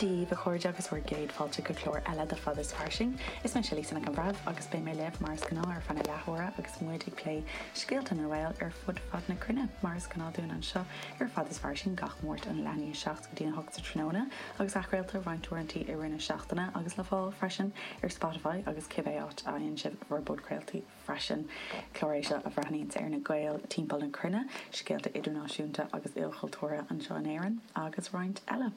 Daoibh, a chairde, agus bhur gcéad fáilte go clár eile de Fada is Fairsing. Is mise Lisa Nic an Bhreithimh agus beidh mé libh, mar is gnáth, ar feadh na leathuaire agus muid ag plé scéalta na nGael ar fud fad na cruinne. Mar is gnáth dúinn anseo ar Fada is Fairsing gach Máirt ón leath i ndiaidh 7 go dtí a 8 sa tráthnóna agus athchraolta roinnt uaireantaí i rith na seachtaine agus le fáil freisin ar Spotify agus cibé áit a fhaigheann sibh bhur bpodchraoltaí. freisin. Clár é seo a bhreathnaíonns ar na Gaeil timpeall na cruinne, scéalta idirnáisiúnta agus ilchultúrtha anseo in Éirinn agus roinnt eile.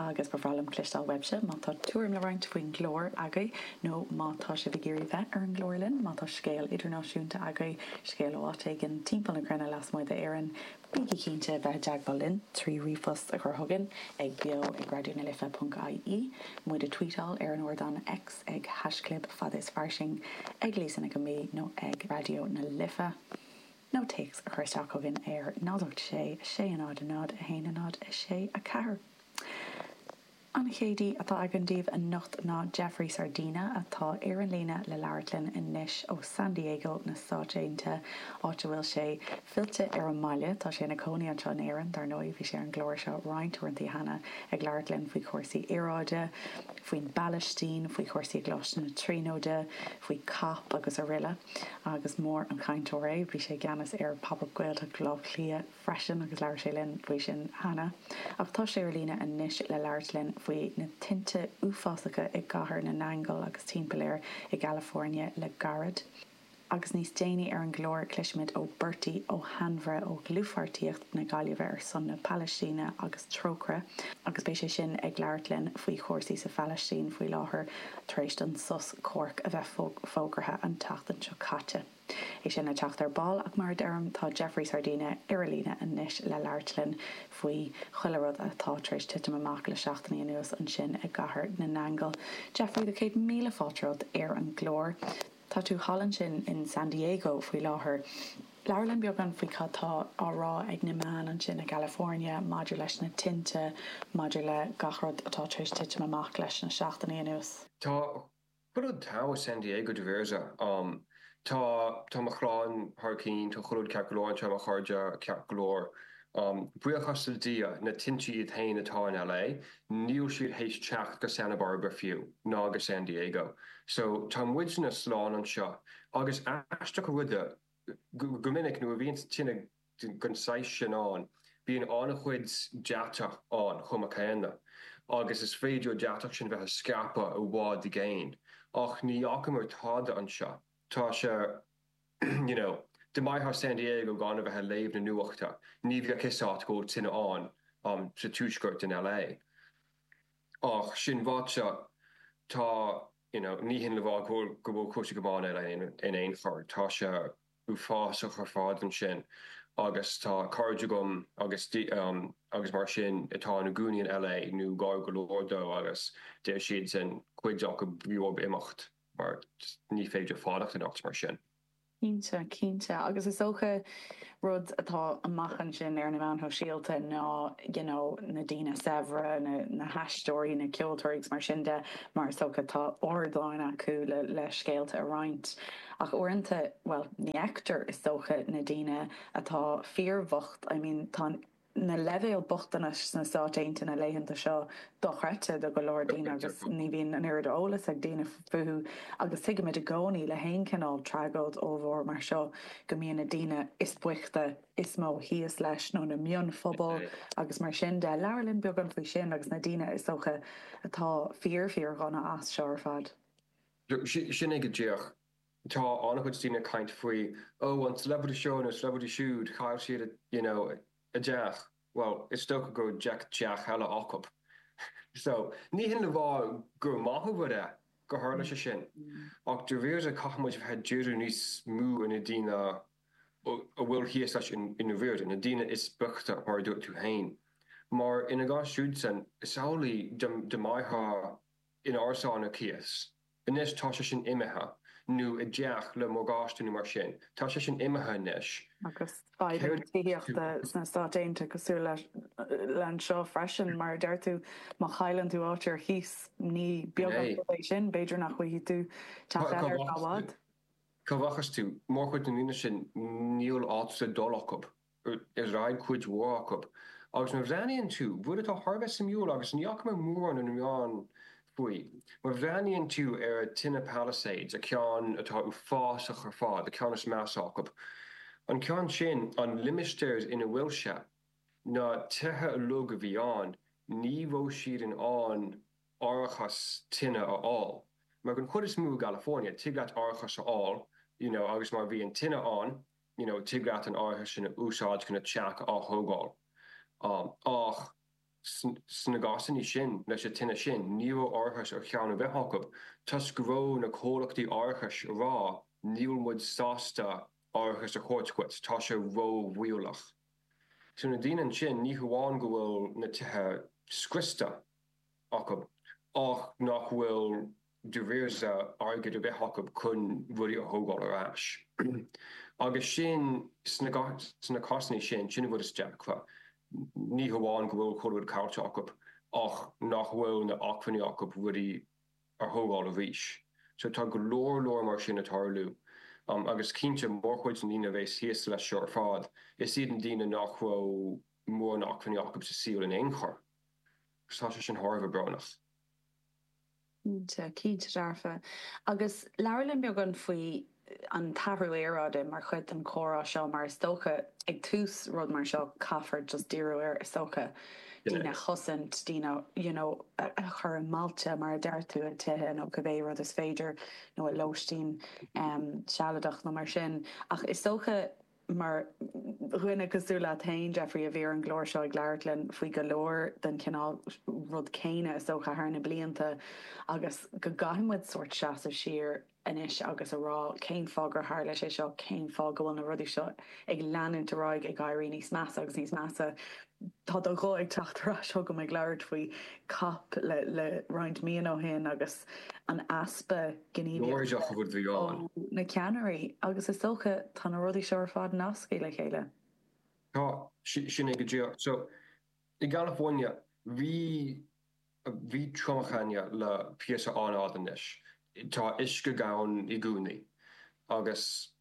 Agus ba bhreá liom cloisteáil uaibhse má tá tuairim le roinnt faoin gclár agaibh nó má tá sibh ag iarraidh bheith ar an gclár linn, má tá scéal idirnáisiúnta agaibh, scéal ó áit éigin timpeall na cruinne lasmuigh d'Éirinn, Bígí cinnte bheith i dteagmháil linn trí ríomhphost a chur chugainn ag beo ag Raidió na Life ponc IE, muid a tweetáil ar an ardán X ag hashchlib fada is fairsing, ag Lisa Nic an B nó ag Raidió na Life, nó téacs a chur isteach chugainn ar 086 600 1064. An chéad aoi atá againn daoibh anocht ná Jeffrey Sardina, atá ar an líne le labhairt linn anois ó San Diego na Stáit Aontaithe, áit a bhfuil sé fillte ar an mbaile. Tá sé ina chónaí anseo in Éirinn, dar ndóigh. Bhí sé ar an gclár seo roinnt uaireantaí cheana, ag labhairt linn faoi chúrsaí aeráide, faoin bPalaistín, faoi chúrsaí i gColáiste na Tríonóide, faoi COP agus aroile. Agus mór an cainteoir é. Bhí sé i gceannas ar Pop Up Gaeltacht Bhaile Átha Cliath freisin agus labhair sé linn faoi sin cheana ach tá sé ar líne anois le labhairt linn faoi na tinte uafásacha i gCathair na nAingeal agus timpeall air i gCalifornia le gairid. Agus níos déanaí ar an gclár, cloisfimid ó Bertie Ó hAinmhire ó Dhlúthpháirtíocht na Gaillimhe ar son na Palaistíne agus Trócaire agus beidh sé sin ag labhairt linn faoi chúrsaí sa Phalaistín faoi láthair tar éis don sos comhraic a bheith fógartha an tseachtain seo caite. É sin le teacht ar ball ach mar a deirim, tá Jeffrey Sardina ar líne anois le labhairt linn faoi chuile rud atá tar éis titim amach le seachtainí anuas ansin i gCathair na nAingeal. Jeffrey, tá céad míle fáilte romhat ar an gclár. Tá tú thall ansin in San Diego faoi láthair. Labhair linn beagán faoi cad tá á rá ag na meáin ansin i gCalifornia maidir leis na tinte, maidir le gach rud atá tar éis titim amach leis na seachtainí anuas. Tá Chuile rud togha i San Diego go bhfios dom, tá, tá mo chlann thar cinn, tá chuile rud ceart go leor anseo, mo chairde ceart go leor um, buíochas le Dia, na tinte iad féin atá in LA, níl siad théis teacht go Santa Barbara fiú, ná go San Diego. So, tá muidne slán anseo. Agus aisteach an rud é, go, go minic nuair a bhíonns tine den saghas sin ann, bíonn an-chuid deatach ann chomh maith céanna, agus is féidir an deatach sin a bheith ag scaipeadh i bhfad i gcéin. Ach ní fhacamar tada anseo. Tá sé, you know, dá mbeifeá in San Diego gan a bheith ag léamh na nuachta, ní bheadh 'fhios a't go bhfuil tine ann sa tuaisceart in LA. Ach sin ráite, tá, you know, ní hin le rá go bhfuil cúrsaí go maith in LA in aon chor, tá sé. uafásach ar fad ansin agus tá cairde agam agus agus mar sin atá ina gcónaí in LA nó gar go leor dó agus deir siadsan, cuid acu, b'éigean dóibh imeacht mar ní féidir fanacht anocht mar sin. Cinnte, cinnte agus is dócha rud atá amach ansin ar na meáin shóisialta ná you know na daoine saibhre, na haisteoirí, na ceoltóirí agus mar sin de mar is dócha tá ardáin acu le scéalta a roinnt. Ach uaireanta, bhuel, ní fheictear, is dócha, na daoine atá fíorbhocht, I mean, tá na leibhéil bochtanais sna Stáit Aontaithe na laethanta seo dochreidte do go leor daoine agus ní bhíonn an oiread eolais ag daoine fúthu agus tuigimid i gcónaí le haon chineál tragóid ollmhór mar seo go mbíonn na daoine is boichte is mó thíos leis nó na mionphobail agus mar sin de. Labhair linn beagán faoi sin agus na daoine, is dócha, atá fíor, fíor-dhona as seo ar fad. Sin é go díreach. Tá an-chuid daoine ag caint faoi, ó, an celebrity seo nó celebrity siúd, chaill siad a, you know, a dteach. Bhuel, is dócha go raibh deich dteach eile acu. So, ní hin le rá gur maith an rud é gur tharla sé sin, ach dáiríre caithfidh muid a bheith ag díriú níos mó ar na daoine a bhfuil thíos leis i ndáiríre, na daoine is boichte, mar a dúirt tú féin. Mar ina gcás siúdsan, is amhlaidh, dá mbeifeá, in árasán ar cíos. Anois tá sé sin imithe. Nó i dteach le morgáiste nó mar sin. Tá sé sin imithe anois. Agus fadhbanna tithíochta sna Stáit Aontaithe cosúil le anseo freisin, mar a deir tú, má chailleann tú áit ar cíos, ní beag an rud é sin, b'fhéidir nach bhfaighidh tú teach eile ar feadh i bhfad. Cá rachas tú? Mórchuid na ndaoine sin, níl áit le dul acu. dáiríre cuid mhór acu. Agus nuair a bhreathnaíonn tú, rud atá thar a bheith suimiúil agus ní fhaca mé mórán ar na meáin faoi, má bhreathnaíonn tú ar tine Palisades, an ceann atá uafásach ar fad, an ceann is measa acu, an ceann sin, an limistéar ina bhfuil sé, na tithe uilig a bhí ann, ní raibh siad in ann árachas tine a fháil. Mar don chuid is mó i gCalifornia, tig leat árachas a fháil, you know, agus má bhíonn tine ann, you know, tig leat an t-árachas sin a úsáid chun an teach á thógáil. Ach sna gcásanna sin, leis an tine sin, ní raibh árachas ar cheann ar bith acu, toisc go raibh na comhlachtaí árachais ag rá, níl muid sásta árachas a thabhairt dhuit, tá sé ró-bhaolach. So na daoine ansin, ní hamháin go bhfuil na tithe scriosta acu, ach nach bhfuil d'acmhainn airgid a bheith acu chun rudaí a thógáil ar ais. Agus sin, sna cásannaí sin, sin an rud is deacra, ní hamháin go bhfuil chuile rud caillte acu ach nach bhfuil na h-acmhainní acu rudaí a thógáil arís. So tá go leor leor mar sin ag tarlú. Agus cinnte, mórchuid na ndaoine a bhéas thíos leis seo ar fad, is iad na daoine nach raibh mórán acmhainní acu sa saol in aon chor. So tá sé sin thar a bheith brónach. Cinnte, cinnte dearfa. Agus labhair linn beagán faoi an t-athrú aeráide mar chuid den chomhrá seo mar is dócha ag tús rud mar seo caithfear just díriú ar is dócha, daoine a chosaint, daoine you know a chur i mbailte mar a déarfá, i dtithe nó cibé rud is féidir nó i lóistín sealadach nó mar sin ach is dócha Mar dhuine cosúil leat féin, Jeffrey, a bhí ar an gclár seo ag labhairt linn faoi go leor den chineál rud céanna is dócha thar na blianta agus go gcaithfidh muid sórt seasamh siar anois agus a rá cén fáth gur tharla sé seo, cén fáth go bhfuil na rudaí seo ag leanúint ar aghaidh ag éirí níos measa agus níos measa. Tá do ghuth ag teacht ar ais chugam ag labhairt faoi COP le roinnt míonna ó shin agus an easpa. Gníomhaíocht. Láidir a bhí ann. ó na ceannairí agus is dócha tá na rudaí seo ar fad nasctha le chéile. Tá, sin é go díreach. So, i gCalifornia, bhí, bhí triomach againne le píosa an-fhada anois. Tá uisce gann i gcónaí agus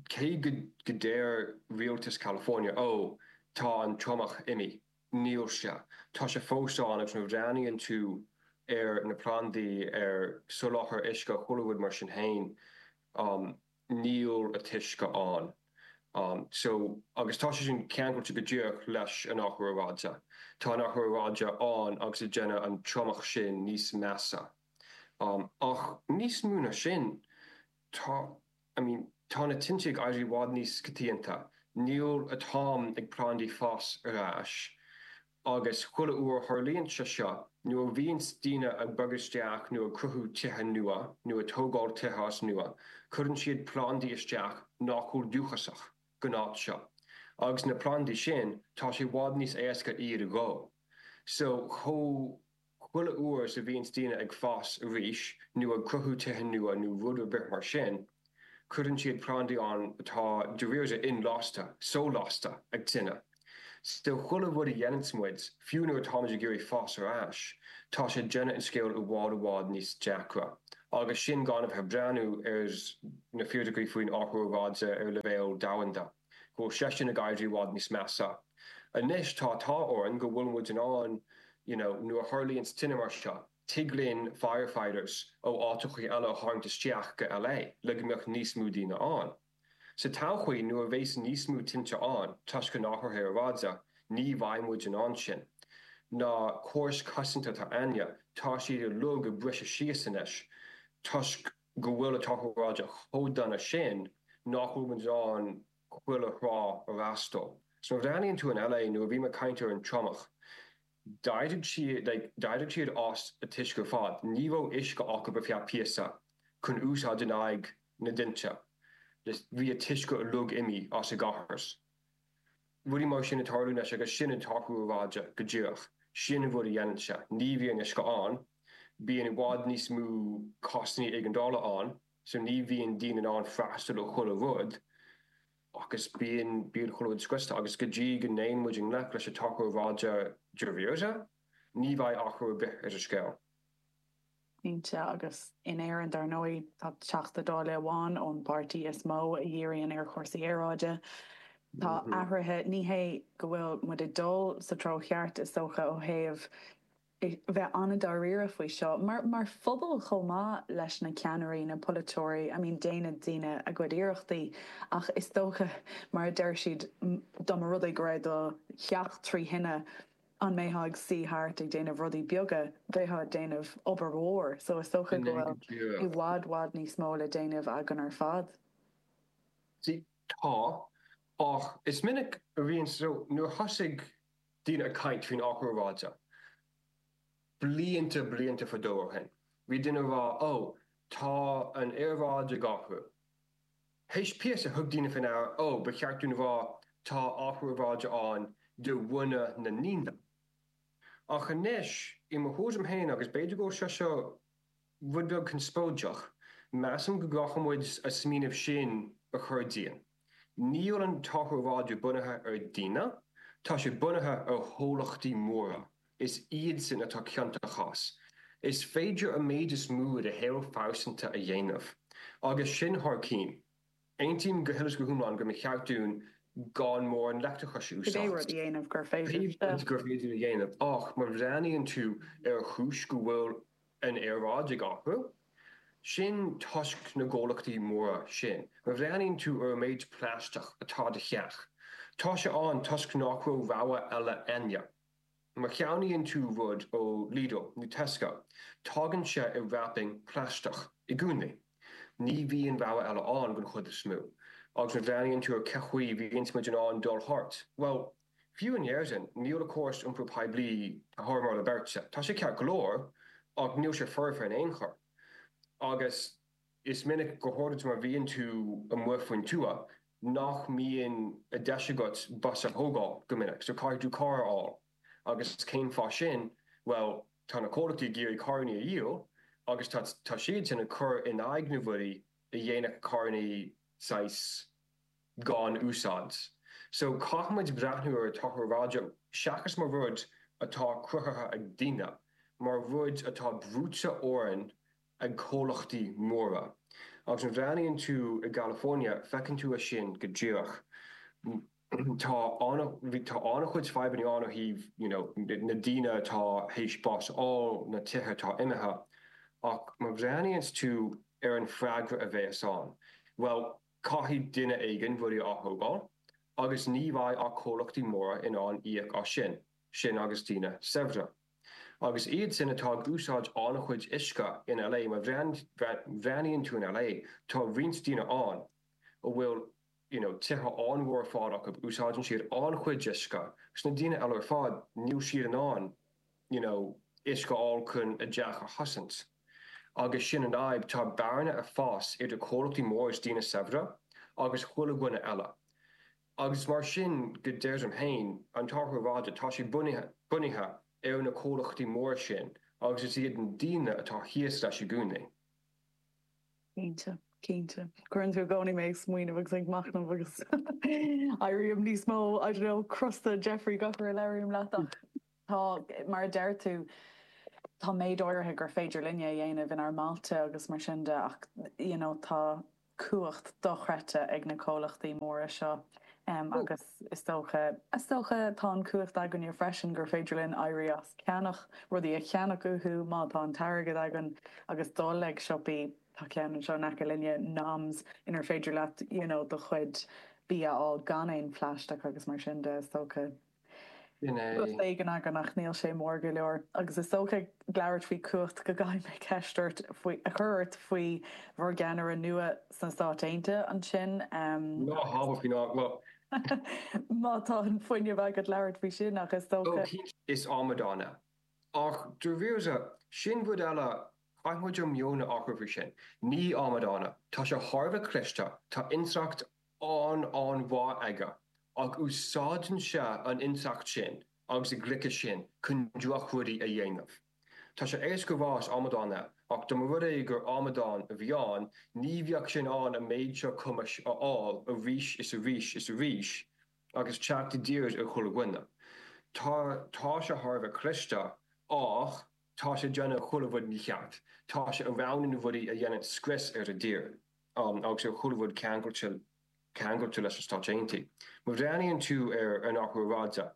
cé go ndeir rialtas California, 'Ó, tá an triomach imithe. Níl sé. Tá sé fós ann agus nuair a bhreathnaíonn tú ar na plandaí an soláthar uisce chuile rud mar sin fhéin níl an t-uisce ann. So agus tá sé sin ceangailte go díreach leis an athrú aeráide. Tá an t-athrú aeráide ann agus ag déanamh an triomach sin níos measa. Ach níos mó ná sin tá. I mean, tá na tinte ag éirí i bhfad níos coitianta, níl an t-am ag plandaí fás ar ais, agus chuile uair a tharlaíonn sé seo, nuair a bhíonns daoine ag bogadh isteach nó ag cruthú tithe nua, nó ag tógáil tithe as nua, cuireann siad plandaí isteach nach bhfuil dúchasach gon áit seo, agus na plandaí sin, tá sé i bhfad níos éasca iad a dhó. So, chomh. Chuile uair is a bhíonns daoine ag fás arís nó ag cruthú tithe nua nó rud ar bith mar sin, cuireann siad plandaí ann atá dáiríre inlasta, so-lasta, ag tine. So, chuile rud a dhéananns muid, fiú nuair atáimid ag iarraidh fás ar ais, tá sé déanamh an scéil i bhfad i bhfad níos deacra. Agus sin gan a bheith ag breathnú ar na fíricí faoin athrú aeráide ar leibhéal domhanda. Go bhfuil sé sin ag éirí i bhfad níos measa. Anois tá an t-ádh orainn go bhfuil muid in ann, you know, nuair a tharlaíonns tine mar seo, tig linn firefighters ó áiteachaí eile a tharraingt isteach go LA le go mbeadh níos mó daoine ann. Sa todhchaí, nuair a bheas níos mó tinte ann, toisc an athraithe aeráide, ní bheidh muid in ann sin. Na córais chosanta atá againne, tá siad uilig ag briseadh síos anois toisc, go bhfuil an t-athrú aeráide chomh dona sin nach bhfuil muid in ann chuile thráth a fhreastal. So má bhreathnaíonn tú in LA, nuair a bhí mé ag caint ar an triomach, d'éirigh siad, d'éirigh siad as an uisce ar fad, ní raibh uisce acu ar feadh píosa chun úsáid in aghaidh na dtinte, bhí an t-uisce uilig imithe as an gcathair. Rudaí mar sin ag tarlú anois agus sin an t-athrú aeráide go díreach. Sin an rud a dhéanann sé. Ní bhíonn uisce ann. Bíonn i bhfad níos mó cásanna éigeandála ann so ní bhíonn daoine in ann freastal ar chuile rud agus bíonn bíonn chuile rud scriosta agus go dtí go dtéann muid i ngleic leis an athrú aeráide dáiríre, ní bheidh athrú ar bith ar an scéal. Cinnte, agus in Éirinn dar ndóigh, tá Teachta Dála amháin ón bpáirtí is mó a dhíríonn ar chúrsaí aeráide. Tá athruithe, ní hé go bhfuil muid ag dul sa treo cheart is dócha ó thaobh bheith an-dáiríre faoi seo, mar phobal chomh maith leis na ceannairí, na polaiteoirí, I mean déanann daoine a gcuid iarrachtaí ach is dócha mar a deir siad, dá mba rud é go raibh do theach trí thine, an mbeifeá ag suí thart ag déanamh rudaí beaga, bheifeá ag déanamh obair mhór, so is dócha go bhfuil i bhfad i bhfad níos mó le déanamh againn ar fad. Sea, tá, ach is minic a bhíonn, so nuair a thosaigh daoine ag caint faoin athrú aeráide blianta blianta fadó ó shin, bhí daoine ag rá, oh, tá an aeráid ag athrú, Théis píosa thug daoine faoi deara, Ó, ba cheart dúinn a rá, tá athrú aeráide ann de bharr na ndaoine. Ach anois, i mo thuairim féin, agus b'fhéidir go bhfuil sé seo rud beag conspóideach, measaim go gcaithfidh muid an smaoineamh sin a chur dínn, níl an t-athrú aeráide bunaithe ar daoine, tá sé bunaithe ar chomhlachtaí móra Is iadsin atá ciontach as. Is féidir an méid is mó de shaol phearsanta a dhéanamh. Agus sin thar cinn. Aontaím go huile is go hiomlán go mba cheart dúinn gan mórán leictreachais a úsáid, pé rud gur féidir a dhéanamh. Ach má bhreathnaíonn tú ar an chúis go bhfuil an aeráid ag athrú, sin toisc na gcomhlachtaí móra sin. Má bhreathnaíonn tú ar an méid plaisteach atá i do theach, tá sé ann toisc nach raibh rogha eile ann. Má cheannaíonn tú rud ó Lidl nó Tesco, tagann sé i wrapping plaisteach i gcónaí. Ní bhíonn rogha eile ann den chuid is mó. Agus má bhreathnaíonn tú ar cén chaoi bhíonns muid in ann dul thart, bhuel, fiú in Éirinn, níl an córas iompair poiblí thar moladh beirte. Tá sé ceart go leor, ach níl sé foirfe in aon chor. Agus. Is minic, go háirid má bhíonn tú amuigh faoin tuath, nach mbíonn deis agat bus a thógáil go minic, so caithfidh tú carr a fháil. Agus cén fáth sin? Bhuel, tá na comhlachtaí ag iarraidh carranna a dhíol agus tá siadsan ag cur in aghaidh na bhforbairtí a dhéanfadh carranna saghas gan úsáid. So, caithfimid breathnú ar athrú aeráide seachas mar rud atá cruthaithe ag daoine, mar rud atá brúite orainn ag comhlachtaí móra. Agus má bhreathnaíonn tú i gCalifornia, feiceann tú é sin go díreach. Tá an-chuid fadhbanna ann ó thaobh you know na daoine atá théis bás a fháil, na tithe atá imithe. Ach má bhreathnaíonns tú ar an freagra a bhéas ann, bhuel, caithfidh duine éigin rudaí a atógáil agus ní bheidh ach comhlachtaí móra in ann íoc as sin, sin agus daoine saibhre. Agus iad sin atá ag úsáid an-chuid uisce in LA, má bhreathnaíonn tú in LA, tá roinnt daoine ann a bhfuil you know tithe an-mhór ar fad acu, úsáideann siad an-chuid uisce, is na daoine eile ar fad, níl siad in ann you know uisce a fháil chun a dteach a chosaint. Agus sin an fhadhb, tá bearna ag fás idir comhlachtaí móra is daoine saibhre agus chuile dhuine eile. Agus mar sin go dearfa féin, an t-athrú aeráide, tá sé bunaithe ar na comhlachtaí móra sin agus is iad na daoine atá thíos leis i gcónaí. Cinnte, cinnte. Cuireann tú i gcónaí mé ag smaoineamh agus ag machnamh agus éirím níos mó, I don't know, crosta, Jeffrey, gach uair a labhraím leat ach. Tá, mar a deir tú, tá méid áirithe gur féidir linne a dhéanamh inár mbailte agus mar sin de ach you know tá cumhacht dochreidte ag na comhlachtaí móra seo agus is dócha, is dócha, tá an chumhacht againne freisin gur féidir linn éirí as ceannach rudaí a cheannach uathu má tá an t-airgead againn agus dul ag siopaí, tá ceann anseo in aice linne, Noms, inar féidir leat you know do chuid bia a fháil gan aon phlaisteach agus mar sin de is dócha. Sin é. Rud éigin againn ach níl sé mór go leor. Agus is dócha ag labhairt faoi chumhacht go gcaithfidh mé ceist a chur ort faoi bhur gceannaire nua sna Stáit Aontaithe ansin. Ná habair faoi ná go. Má tá an fuinneamh agat labhairt faoi sin ach is dócha. Ó cinnte, is amadán é. Ach dáiríre, sin rud eile, caithfidh muid ár meon a athrú faoi sin. Ní amadán é. Tá sé thar a bheith cliste, tá intleacht an-, an-mhaith aige, ach úsáideann sé an intleacht sin agus an gliceas sin chun drochrudaí a dhéanamh. Tá sé éasca rá is amadán é, ach dá mba rud é gur amadán a bhí ann, ní bheadh sé in ann an méid seo cumais a fháil arís is arís is arís agus teacht i dtír ar chuile dhuine. Tá, tá sé thar a bheith cliste, ach tá sé ag déanamh chuile rud mícheart, tá sé ag roghnú na rudaí a dhéanann scrios ar an tír. fhéin agus ar chuile rud ceangailte ceangailte leis na Stáit Aontaithe. Má bhreathnaíonn tú ar an athrú aeráide,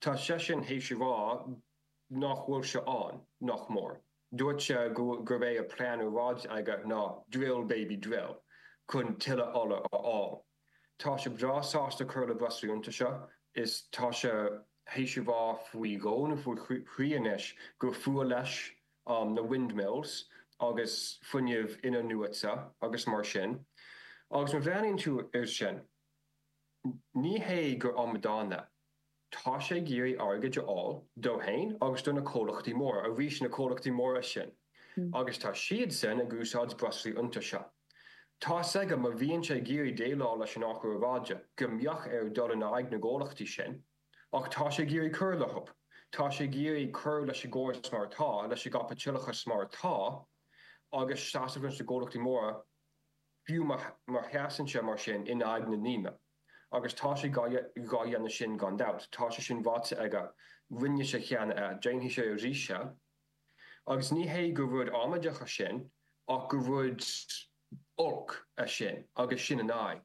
tá seisean théis a rá nach bhfuil sé ann, nach mór. Dúirt sé gurb é an plean a bhí aige ná 'drill, baby, drill' chun tuilleadh ola a fháil. Tá sé breá sásta cur le breoslaí iontaise, is tá sé théis a rá faoi dhó nó faoi thrí anois gur fuath leis na windmills agus fuinneamh inathnuaite agus mar sin, agus má bhreathnaíonn tú air sin, ní hé gur amadán é. Tá sé ag iarraidh airgid a fháil dó fhéin agus do na comhlachtaí móra, arís na comhlachtaí móra sin, agus tá siadsan ag úsáid breoslaí iontaise. Tá's aige má bhíonn sé ag iarraidh déileáil leis an athrú aeráide go mbeadh air dul in aghaidh na gcomhlachtaí sin, ach tá sé ag iarraidh cur leo, tá sé ag iarraidh cur leis an gcóras mar atá, leis an gcaipitileachas mar atá, agus seasamh leis na gcomhlachtaí móra fiú má sheasann sé mar sin in aghaidh na ndaoine. Agus tá sé dhá dhéanamh sin gan dabht, tá sé sin ráite aige, rinne sé cheana é, déanfaidh sé arís é. Agus ní hé gur rud amaideach é sin ach gur rud olc é sin agus sin an fhadhb.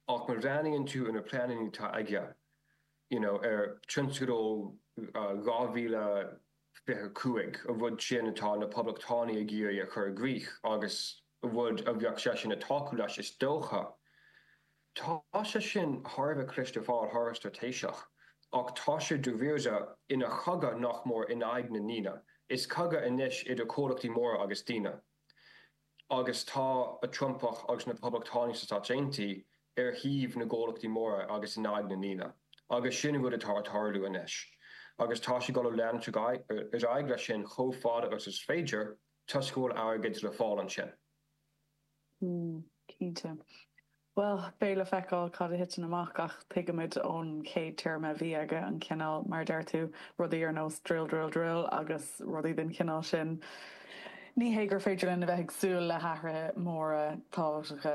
Ach má bhreathnaíonn tú ar na pleananna atá aige, you know, ar tionscadal 2000, 25. an rud sin atá na Poblachtánaigh ag iarraidh a chur i gcrích, agus an rud a bheadh seisean ag tacú leis, is dócha. Tá sé sin thar a bheith cliste thar a, thar a bheith straitéiseach, ach tá sé dáiríre ina chogadh nach mór in aghaidh na ndaoine, is cogadh anois idir comhlachtaí móra agus daoine. agus tá an Trumpach agus na Poblachtánaigh sna Stáit Aontaithe ar thaobh na gcomhlachtaí móra agus in aghaidh na ndaoine, agus sin an rud atá ag tarlú anois, agus tá siad ag dul ag leanúint ar aghaidh leis sin chomh fada agus is féidir, toisc go bhfuil airgead le fáil ansin. Mm, cinnte. Bhuel, beidh le feiceáil cad a thiteann amach ach tuigimid ón chéad téarma a bhí aige, an cineál, mar a deir tú, rudaí ar nós drill, drill, drill agus rudaí den chineál sin. Ní hé gur féidir linn a bheith ag súil le hathruithe móra tábhachtacha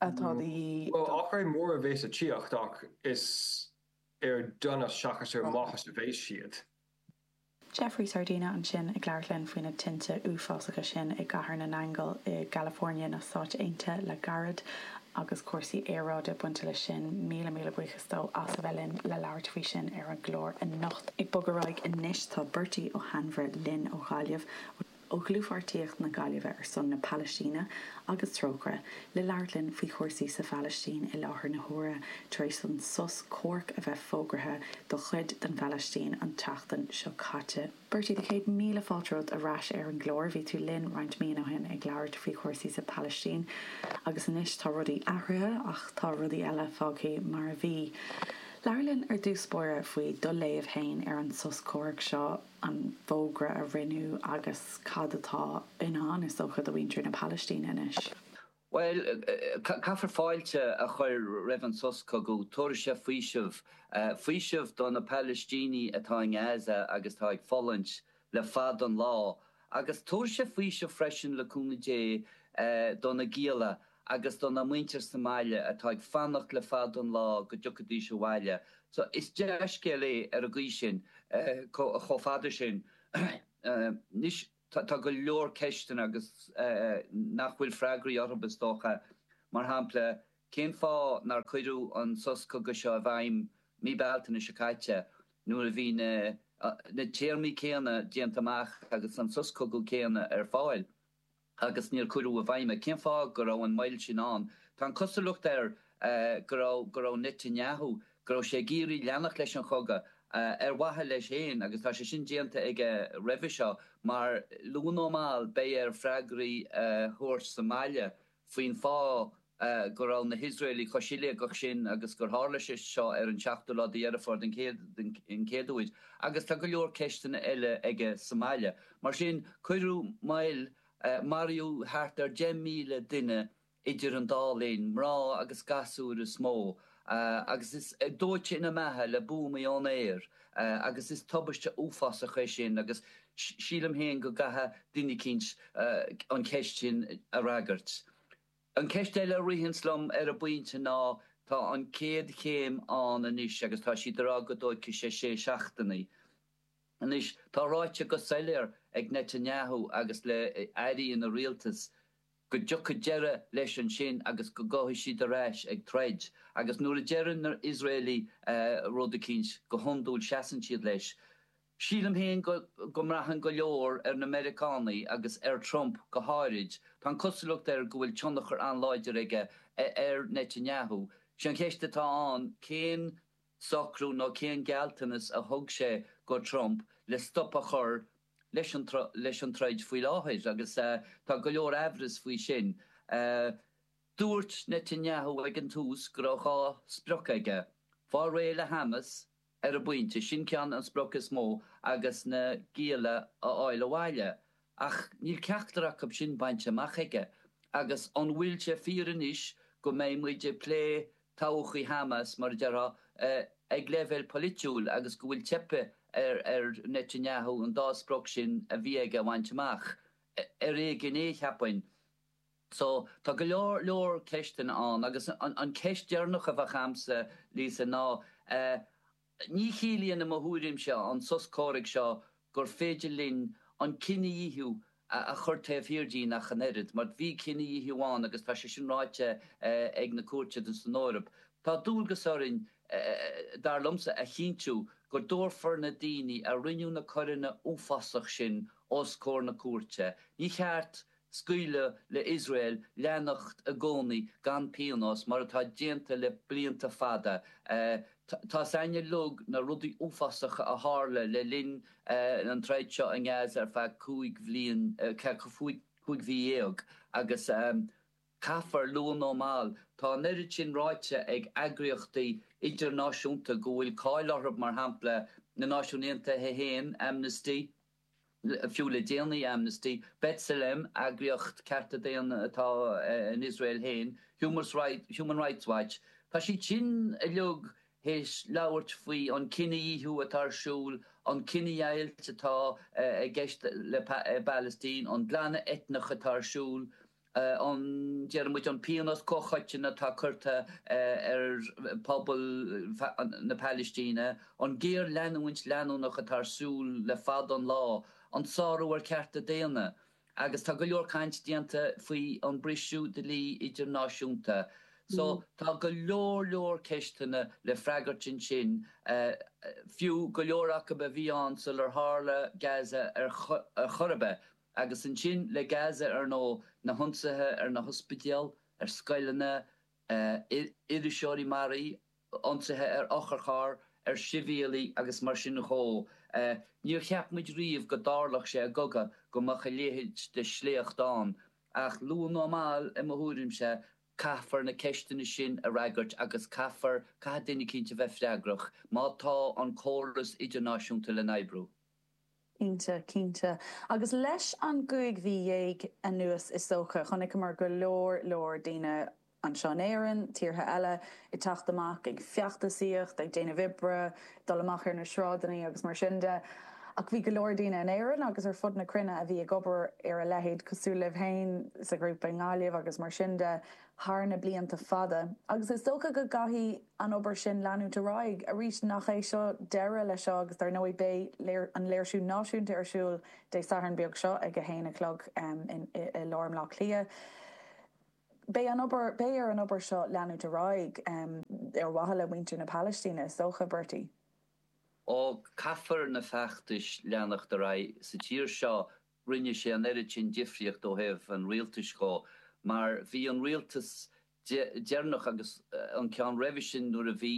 atá de dhíth. Bhuel, athruithe móra a bheas le tíocht ach is ar donas seachas ar mhaitheas a bheas siad. Jeffrey Sardina ansin ag labhairt linn faoi na tinte uafásacha sin i gCathair na nAingeal i gCalifornia na Stáit Aontaithe le gairid agus cúrsaí aeráide bainte leis sin, míle míle buíochas dó as a bheith linn le labhairt faoi sin ar an gclár anocht. Ag bogadh ar aghaidh anois tá Bertie Ó hAinmhire linn ó Ghaillimh. ó Dhlúthpháirtíocht na Gaillimhe ar son na Palaistíne agus Trócaire, le labhairt linn faoi chúrsaí sa Phalaistín i láthair na huaire tar éis don sos comhairc a bheith fógartha do chuid den Phalaistín an tseachtain seo caite. Bertie, na céad míle fáilte romhat ar ais ar an gclár. Bhí tú linn roinnt míonna ó shin ag labhairt faoi chúrsaí sa Phalaistín agus anois tá rudaí athraithe ach tá rudaí eile fágtha mar a bhí. Labhair linn ar dtús báire faoi do léamh féin ar an sos comhairc seo. an fógra a rinneadh agus cad atá i ndán, is dócha, do mhuintir na Palaistíne anois. Bhuel, caithfear fáilte a chur roimh an sos cogaidh. Tabharfaidh sé faoiseamh. Faoiseamh do na Palaistínigh atá i nGaza agus atá ag fulaingt le fada an lá. Agus tabharfaidh sé faoiseamh freisin, le cúnamh Dé, do na gialla agus dona muintir sa mbaile atá ag fanacht le fada an lá go dtiocfaidís abhaile. So, is dea-scéal é ar an gcaoi sin, chomh fada sin. Anois, tá go leor ceisteanna agus nach bhfuil freagraí orthu, is dócha, mar shampla, cén fáth nár cuireadh an sos cogaidh seo i bhfeidhm mí Bealtaine seo caite nuair a bhí na téarmaí céanna déanta amach agus an sos cogaidh céanna ar fáil? agus níor cuireadh i bhfeidhm é. Cén fáth go raibh an moill sin ann? Tá an chosúlacht air go raibh go raibh Netanyahu, go raibh sé ag iarraidh leanacht leis an chogadh ar mhaithe leis féin agus tá sé sin déanta aige roimhe seo mar, luath nó mall, beidh air freagraí a thabhairt sa mbaile faoin fáth go raibh na hIosraelaigh chomh siléigeach sin agus gur tharla sé seo ar an seachtú lá de Dheireadh Fómhair an chéad uair, agus tá go leor ceisteanna eile aige sa mbaile. Mar sin, cuireadh moill, maraíodh thart ar 10,000 duine idir an dá linn, mná agus gasúir is mó, agus iad dóite ina mbeatha le buamaí ón aer agus is tubaiste uafásach é sin agus sílim féin go gcaithfidh duine eicínt an cheist sin a fhreagairt. An cheist eile a ritheanns liom ar an bpointe ná tá an chéad chéim ann anois agus tá siad ag rá go dtóigfidh sé sé seachtainí. Anois tá ráite go soiléir ag Netanyahu agus ag airí ina rialtas, go dtiocfaidh deireadh leis ansin agus go gcuirfidh siad ar ais ag troid. Agus nuair a deireann na hIosraelaigh rud eicínt, go hiondúil seasann siad leis. Sílim féin go mbraitheann go leor ar na Meiriceánaigh agus ar Trump go háirid, tá an cosúlacht air go bhfuil tionchar an-láidir aige ar Netanyahu. 'Sé an cheist atá ann, cén socrú nó cén gealltanas a thug sé do Trump le stop a chur le leis an troid faoi láthair agus tá go leor amhras faoi sin. Dúirt Netanyahu ag an tús go raibh dhá sprioc aige, fáil réidh le Hamas ar an bpointe, sin ceann, an sprioc is mó, agus na gialla a fháil abhaile. Ach níl ceachtar acu sin bainte amach aige. Agus an bhfuil sé fíor anois go mbeidh muid ag plé todhchaí Hamas, mar a déarfá, ag leibhéal poilitiúil agus go bhfuil teipthe ar Netanyahu an dá sprioc sin a bhí aige a bhaint amach, ar éigean é, cheapfainn. So, tá go leor leor ceisteanna ann agus an cheist deireanach a bheadh a'msa, Lisa, ná eh. Ní chiallaíonn, i mo thuairimse, an sos comhraic seo gur féidir linn an cinedhíothú a chur taobh thiar dínn ach an oiread, mar bhí cinedhíothú ann agus tá sé sin ráite ag na cúirteanna san Eoraip. Tá dualgas orainn, dar liomsa, a chinntiú go dtabharfar na daoine a rinne na coireanna uafásach sin os comhair na cúirte. Ní cheart scaoileadh le Iosrael leanacht i gcónaí gan pionós, mar atá déanta le blianta fada. Tá a fhios a'inn uilig na rudaí uafásacha a tharla le linn an troid seo i nGaza ar feadh cúig déag, cúig mhí dhéag, agus caithfear, luath nó mall, tá an oiread sin ráite ag eagraíochtaí idirnáisiúnta go bhfuil cáil orthu, mar shampla na Náisiúin Aontaithe féin, Amnesty, fiú le déanaí, Amnesty, B'Tselem, eagraíocht cearta daonna atá in Iosrael féin, Human Rights Watch, tá siad sin uilig théis labhairt faoi an cinedhíothú atá ar siúl, an cinedheighilt atá i gceist le Palaistín, an glanadh eitneach atá ar siúl. an, deir muid, an pionós comhchoiteann atá curtha ar phobal na Palaistíne, an géarleanúint leanúnach atá ar siúl le fada an lá, an sárú ar chearta daonna, agus tá go leor caint déanta faoi an briseadh dlí idirnáisiúnta. So, tá go leor leor ceisteanna le freagairt ansin, fiú go leor acu a bhí ann sular tharla Gaza ar chor ar bith. Agus ansin le Gaza ar ndóigh, na hionsaithe ar na hospidéil, ar scoileanna, iriseoirí maraithe, ionsaithe ar otharchairr, ar shibhialaigh agus mar sin dhó. Níor cheap muid riamh go dtarlódh sé i gcogadh go mbeadh a leithéid de shléacht ann, ach luath nó mall, i mo thuairimse, caithfear na ceisteanna sin a fhreagairt agus caithfear, caithfidh duine cinnte a bheith freagrach, má tá an córas idirnáisiúnta le n-oibriú. Cinnte, cinnte. Agus leis an gcúig mhí dhéag anuas is dócha, chonaiceamar go leor, leor daoine anseo in Éirinn, tíortha eile, ag teacht amach, ag feachtasaíocht, ag déanamh oibre, dul amach ar na sráideanna agus mar sin de. Ach bhí go leor daoine in Éirinn agus ar fud na cruinne a bhí ag obair ar a leithéid, cosúil libh féin, sa ghrúpa i nGaillimh agus mar sin de, thar na blianta fada agus is dócha go gcaithfidh an obair sin leanúint ar aghaidh. Arís, nach é seo deireadh leis seo agus dar ndóigh beidh an léirsiú náisiúnta ar siúl Dé Sathairn beag seo ag a haon a chlog i lár mBleá Cliath. Beidh an obair, beidh ar an obair seo leanúint ar aghaidh ar mhaithe le muintir na Palaistíne, is dócha, Bertie. Ó, caithfear na feachtais leanacht ar aghaidh sa tír seo rinne sé an oiread sin difríocht ó thaobh an rialtais dhó mar bhí an rialtas deireanach agus an ceann roimhe sin nuair a bhí,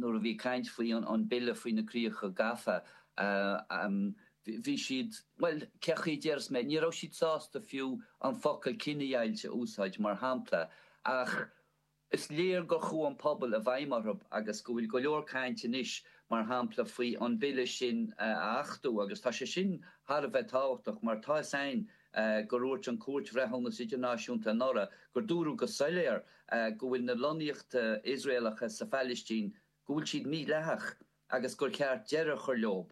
nuair a bhí caint faoi an bille faoi na críocha gafa, bhí siad, bhuel, cé chaoi a déarfas mé, ní raibh siad sásta fiú an focal 'cinedheighilt' a úsáid mar shampla ach Is léir gur chuaigh an pobal i bhfeidhm orthu agus go bhfuil go leor cainte anois, mar shampla, faoi an bille sin a achtú agus tá sé sin thar a bheith tábhachtach mar tá 'fhios a'inn gur úirt an Cúirt Bhreithiúnas Idirnáisiúnta anuraidh gur dúradh go soiléar go bhfuil na lonnaíochta Iosraelacha sa Phailistín go bhfuil siad mídhleathach agus gur cheart deireadh a chur leo.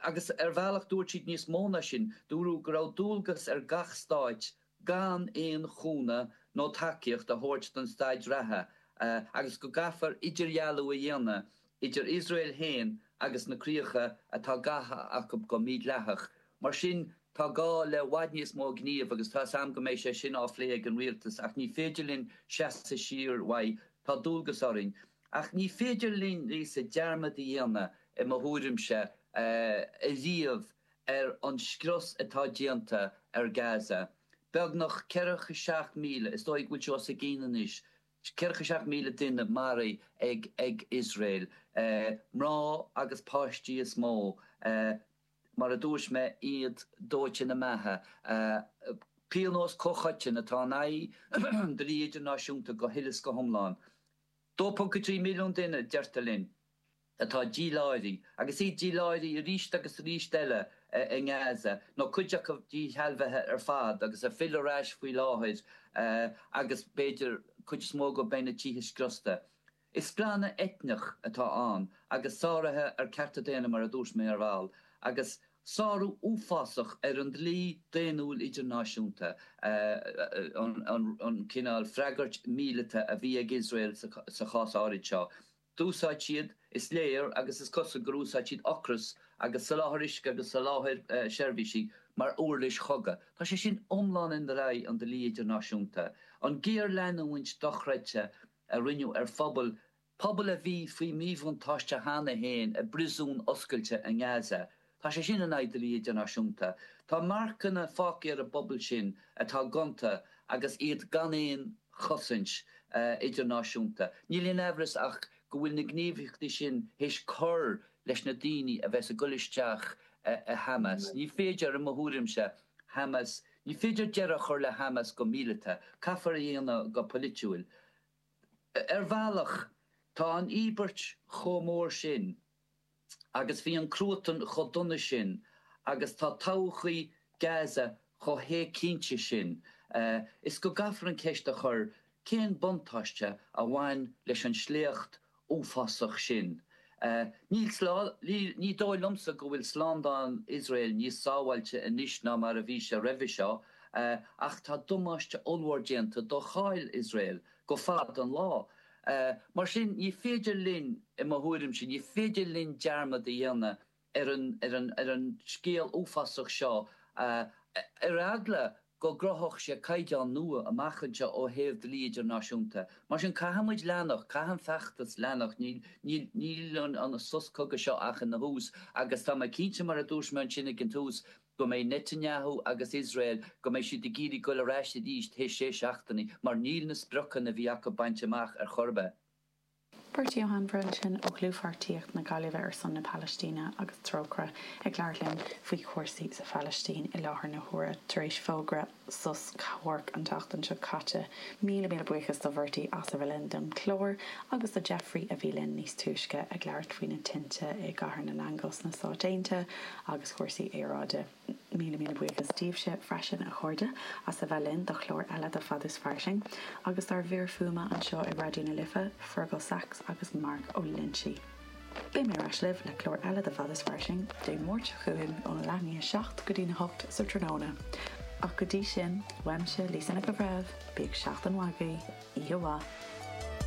Agus ar bhealach dúirt siad níos mó ná sin, dúradh go raibh dualgas ar gach stáit gan aon chúnamh nó tacaíocht a thabhairt don staid reatha agus go gcaithfear idirdhealú a dhéanamh idir Iosrael féin agus na críocha atá gafa acu go mídhleathach. Mar sin tá gá le i bhfad níos mó gnímh agus tá 's a'm go mbeidh sé sin á phlé ag an rialtas ach ní féidir linn seasamh siar uaidh, tá dualgas orainn. Ach ní féidir linn, Lisa, dearmad a dhéanamh, i mo thuairimse, ariamh ar an scrios atá déanta ar Gaza. Beagnach ceathracha seacht míle, is dóigh go bhfuil sé os a chionn anois, ceathracha seacht míle duine maraithe ag Iosrael. Mná agus páistí is mó, mar a dúirt mé, iad dóite ina mbeatha. Pionós comhchoiteann atá in aghaidh an dlí idirnáisiúnta go huile is go hiomlán. 2.3 milliún duine, deirtear linn, atá díláithrí, agus iad díláithrí arís agus arís eile i nGaza, nó cuid acu díshealbhaithe ar fad agus ag filleadh ar ais faoi láthair, agus b'fhéidir cuid is mó acu beidh na tithe scriosta. Is glanadh eitneach atá ann, agus sáruithe ar chearta daonna mar a dúirt mé ar ball, agus. Sárú uafásach ar an dlí daonnúil idirnáisiúnta an cineál freagairt mhíleata a bhí ag Iosrael sa chás áirid seo. D'úsáid siad, is léir, agus is cosúil gur úsáid siad ocras agus soláthar uisce agus soláthar seirbhísí mar uirlis chogaidh. Tá sé sin iomlán in aghaidh an dlí idirnáisiúnta, an géarleanúint dochreidte a rinneadh ar phobal Pobal a bhí faoi mhíbhuntáiste cheana féin i bpriosún oscailte i nGaza, tá sé sin in aghaidh dlí idirnáisiúnta. Tá marcanna fágtha ar an bpobal sin atá gonta agus iad gan aon chosaint idirnáisiúnta. Níl aon aimhreas ach go bhfuil na gníomhaíochtaí sin théis cur leis na daoine a bheas ag dul isteach i Hamas. Ní féidir, i mo thuairimse, Hamas, ní féidir deireadh a chur le Hamas go míleata, caithfear é a dhéanamh go polaitiúil. Ar bhealach, tá an íobairt chomh mór sin agus bhí an cruatan chomh dona sin agus tá todhchaí Gaza chomh héigcinnte sin is go gcaithfear an ceist a chur, cén buntáiste a bhain leis an sléacht uafásach sin. Ní dóigh liomsa go bhfuil slándáil Iosrael níos sábháilte anois ná mar a bhí sé roimhe seo, ach tá damáiste ollmhór déanta do cháil Iosrael go fada an lá. Mar sin, ní féidir linn, i mo thuairimse, ní féidir linn dearmad a dhéanamh ar ar an scéal uafásach seo, ar eagla go gcruthódh sé caighdeán nua amach anseo ó thaobh dlí idirnáisiúnta. Mar sin, caithfidh muid leanacht, caithfidh an feachtas leanacht, níl níl níl an an sos cogaidh seo ach ina thús agus tá mé cinnte, mar a dúirt mé ansin ag an tús, go mbeidh Netanyahu agus Iosrael, go mbeidh siad ag iarraidh goil ar ais arís théis sé seachtainí, mar níl na spriocanna a bhí acu bainte amach ar chor ar bith. Beirtí Ó hAinmhire ansin ó Dhlúthpháirtíocht na Gaillimhe ar son na Palaistíne agus Trócaire ag labhairt linn faoi chúrsaí sa Phalaistín i láthair na huaire tar éis fógra sos comhraic an tseachtain seo caite, Míle, míle buíochas do Bhertie as a bheith linn don chlár agus do Jeffrey a bhí linn níos túisce ag labhairt faoi na tinte i gCathair na nAingeal sna Stáit Aontaithe agus cúrsaí aeráide. Míle míle buíochas daoibhse freisin, a chairde, as a bheith linn do chlár eile de Fad is Fairsing, agus dár bhfir fuaime anseo i Raidió na Life, Fergal Sachs agus Mark Ó Loinsigh. Beidh mé ar ais libh le clár eile de Fad is Fairsing Dé Máirt seo chugainn óna leath i ndiaidh a seacht go dtína hocht sa tráthnóna. Ach go dtí sin, uaimse, Lisa Nic an Bhreithimh, bíodh seachtain mhaith agaibh, oíche mhaith!